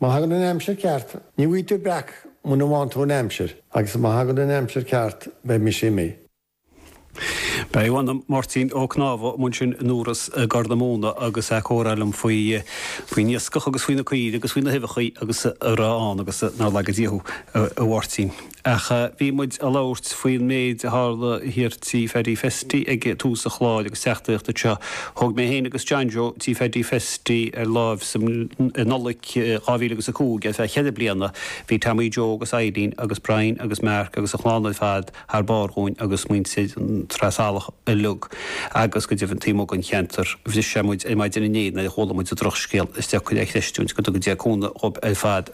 Má thagann an aimsir ceart, ní bhfaighidh tú breac muna bhfaghann tú an aimsir agus má thagann an aimsir ceart beidh mise amuigh. Beidh, a mh'anam. Máirtín Ó Conámha ansin i nDubhros i gCorr na Móna agus é ag comhrá liom faoi, faoin iascach agus faoi na caoirigh agus faoi na huibheachaí agus a raibh ann agus nár laga Dia thú, a Mháirtín. Ach bhí muid ag labhairt faoin méid a tharla thiar Tigh Phaddy Festy ag tús an chláir agus teachtaireacht anseo. Thóg mé féin agus John Joe Tigh Pheaidí Festy ar láimh i Nollaig 2005 ar feadh cheithre bliana. Bhí Tommy Joe agus Eileen agus Brian agus Mark agus an chlann ar fad thar barr dhúinn agus muintir Shraith Salach uilig agus go deimhin taobh amuigh den cheantar. Bhris sé muid ar maidin inné nuair a chuala muid an drochscéal is deacair a chreistiúint go dtuga Dia cúnamh dhóibh ar fad.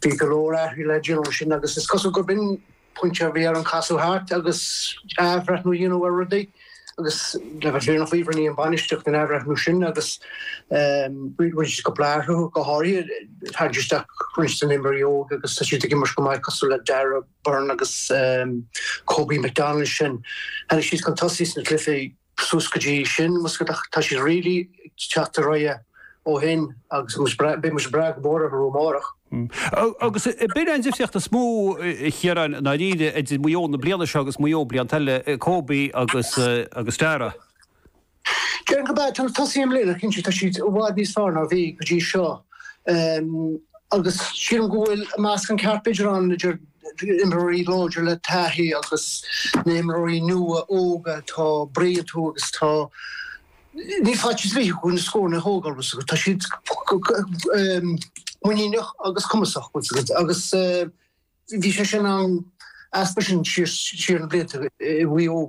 Bhí go leor athraithe le déanamh ansin agus is cosúil gurb in pointe a bhí orainn casadh thart agus athbhreithniú a dhéanamh ar rudaí agus le bheith fírinneach faoi rinne an bainistíocht an athbhreithniú sin agus rinneadh go leor athrú go háirithe tabhairt isteach roinnt de na imreoirí óga agus tá siad ag imirt go maith cosúil le Darragh Beirne agus Kobe McDonald sin. Tháinig siad chun tosaigh sna cluichí suas go dtí sin. Bhfuil a fhios agat ach tá siad really ag teacht ar aghaidh ó shin agus beidh muid ag brath go mór orthu amárach. Agus ab in é an difríocht is mó a Chiaráin i ndáiríre idir Maigh Eo na bliana seo agus Maigh Eo blianta eile, Kobe agus Darragh. Déarfainn gurb ea, na tosaithe i mbliana cinnte tá siad i bhfad níos fearr ná bhí go dtí seo agus sílim go bhfuil meascán ceart b'fhéidir ann idir imreoirí láidre le taithí agus na imreoirí nua óga atá ag briseadh tríd agus tá níl faitíos ar bith orthu na scóranna a thógáil bhfuil a fhios agat tá siad muiníneach agus cumasach bhfuil a fhios agat agus bhí sé sin in easnamh ansin siar siar na blianta i Maigh Eo.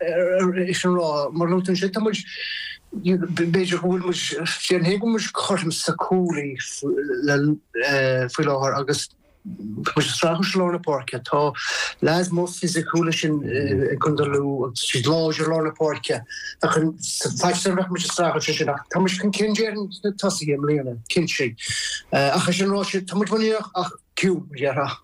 é sin ráite, mar a luaigh tú ansin, tá muid, b'fhéidir go bhfuil muid, déarfainn féin go bhfuil muid cothrom sna cúlaithe faoi láthair agus tá muid ag streachailt i lár na páirce. Tá leaids mór fisiciúla ansin i gcontae Lú agus tá siad láidir i lár na páirce. Sa pháirc sin bheadh muid ag streachailt ansin ach tá muid chun cinn déarfainn sna tosaithe i mbliana, cinnte. Ach é sin ráite, tá muid muiníneach ach, tírdhreacha.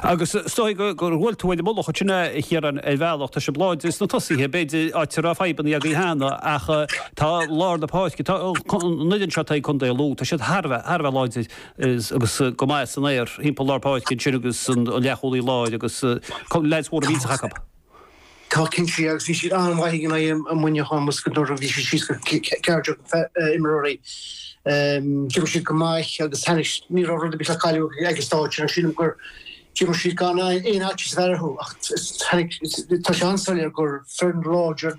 Agus is dóigh go bhfuil tú uaim an moladh sin, a Chiaráin, ar bhealach. Tá sibh láidir sna tosaithe, b'fhéidir, áit a raibh fadhbanna agaibh cheana, ach tá lár na páirce, tá an fhoireann seo atá ag Contae Lú, tá siad thar a bheith láidir agus go maith san aer, thimpeall lár páirce ansin agus an leathchúlaí láir agus leaids mhóra mhillteacha acu. Tá cinnte agus bhí siad an-mhaith in aghaidh Muineachán, tá a fhios agat nuair a bhí siad síos go ceathrar déag imreoirí. D'imir siad go maith agus tá a fhios agat, ní raibh rud ar bith le cailleadh ag an stáitse agus sílim gur d'imir siad gan aon fhaitíos a bheith orthu ach tá a fhios agat, tá sé an-soiléir gur foireann láidir,